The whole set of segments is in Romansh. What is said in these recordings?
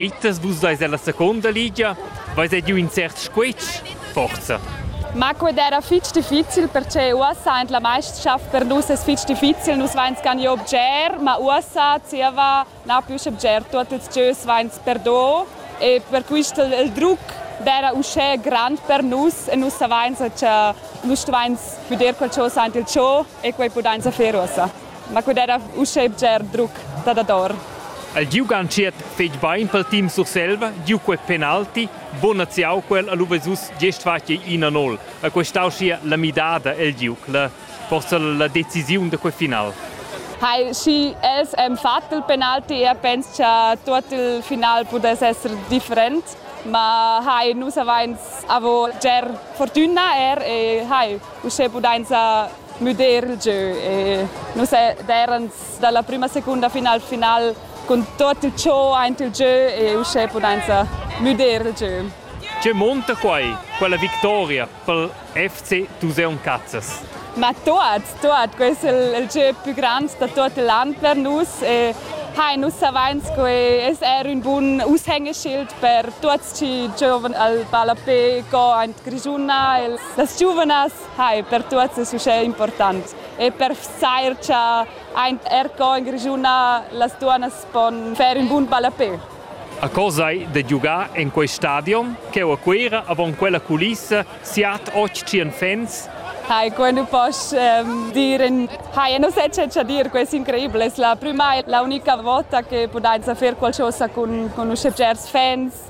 Ittas vus deis ella seconda ligia? Veis ei giu in cert squetsch? Forza! Ma quei era fitg difficil perche uossa en la meisterschaft per nus es fitg difficil, nus vains ganieu bger, ma uossa zieva na plü che bger, tuot ils gieus vains perdo e per quist il druc d'era uschè grand per nus e nus savains cha nus stuvains füder qualchosa aint il cho e quai pudains fer uossa. Ma quai era uschè bger druc da dador. El giugantschiet fetg bein pel team Surselva, giu quel penalti, bonaziau quel a Luvesus gest fatg ina nol, a quei stau schia la midada el giug, la, forsa la decisiun da quei final. Hai, schi els han fatg il penalti e pens cha tuot il final pudess esser different, ma hai, nus avains avo bger fortüna er e hai uschè pudainsa müder il gieu e nus erans dalla prima secunda final final cun tot il ciò aint il gieu e uschè pudainsa müder il gieu. Tge monta quai, quella victoria pel FC Tuseun Cazzas? Ma tuot, tuot, questo è il, il gieu più grande da tutto l'an per nus e hai, nus savains che es er un bun aushängeschild per tuots chi giovan al ballapé co aint Grischuna. Das Giuvenas Hi, per tuots es uschè important e per vsair cha aint er co in Grischuna las duonnas pon fer ün bun ballapè. A co sai da giugar en quei stadion cheu a Cuera avon quella culissa siat och tschien fans? Hai, quei nu poss ehm, dir in... Hai, e non sai che cha dir, quei es increibel, es la prüma e la unica vota che pudainsa fer qualchosa cun, cun uschè bgers fans.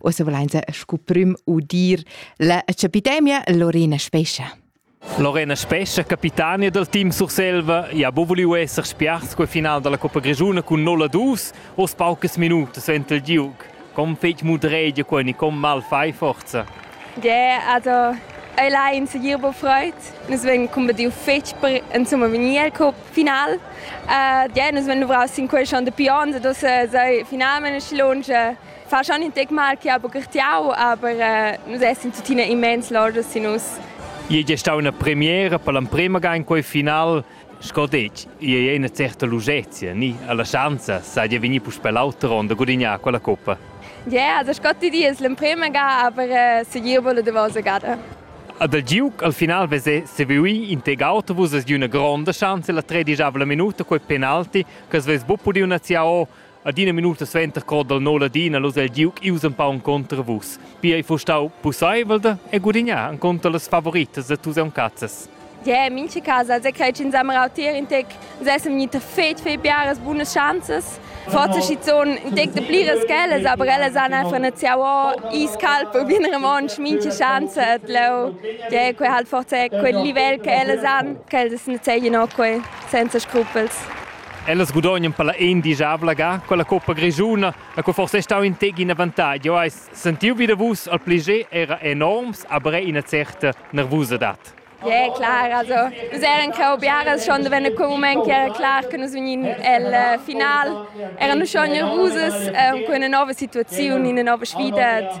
Ussa volainsa scu prüm udir la epidemia Lorena Spescha. Lorena Spescha, capitania del team Surselva, ja bo voliu esser spiars quel final della Coppa Grigiuna cun 0 a 2, os paucas minutas vent il Duke. Com fec mudregia quel, com mal fai forza? Ja, also allein segir bo freut. Nus ven combadiu fetg per insomma vegnir al cup final. Uh, ja, nus ven duvraus sin quel schon de pions, dos uh, sai finalment scilonge fa schon in tec mal che ha bucchertiau, aber äh, nus essin tuttina immens lordas sin nus. Ei è stata una premiera per l'emprima ga in quei final. Sco detg, ei è una certa lungezia, ni alla chance, sai di venir puspè l'altra ronda a gudignare quella coppa. Ja, yeah, also Scotti di es l'emprima ga, aber äh, se gir vole de vosa gada. Ad el Duke al final vese Sevui in teg autobus es di una gronda chance la tredischavla minuta quei penalti che es ves bu pudi una ziao Adina minuta suenter co dal no Ladina lus el giug ius empau enconter vus. Pia ei fustau pusseivel da e gudignar enconter las favoritas da tus cazzas. Yeah, mincha casa als crei ch'ins am rautir in tec, uns essem gnite fet fe piaras bunas schanzas. Forse schizoun in tec de pliras ch'ellas, aber ellas han einfach net siau iscalpo bien remonsch mincha schanza, et leu. Yeah, quei halt forse quel livel che ellas han, ch'ellas net seien no quei senza scrupels. Ellas gudognan per la ein digiavla ga quella coppa grischuna, e co forse è stau in tec in avantagl. Jau hai sentiu vi da vus al pliger era enorms, aber ina certa nervusadad. Ja, klar. Also, nus eran cheu biaras schon da venner quel moment che era clar che nus vegnin el uh, final. Eran nus schon nervusas uh, con una nova situazione, una nova sfida.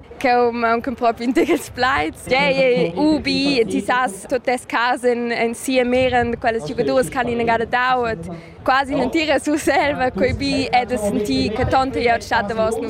ch'eu mauncan propi ün tigls plaids. Tgei ubi, ti sas tut tes casa in, in sia mera, quelles giocadoras ch'han inagada dau, et quasi non ti resurselva quei bi e de sentir che tonta glieud stat davos nus.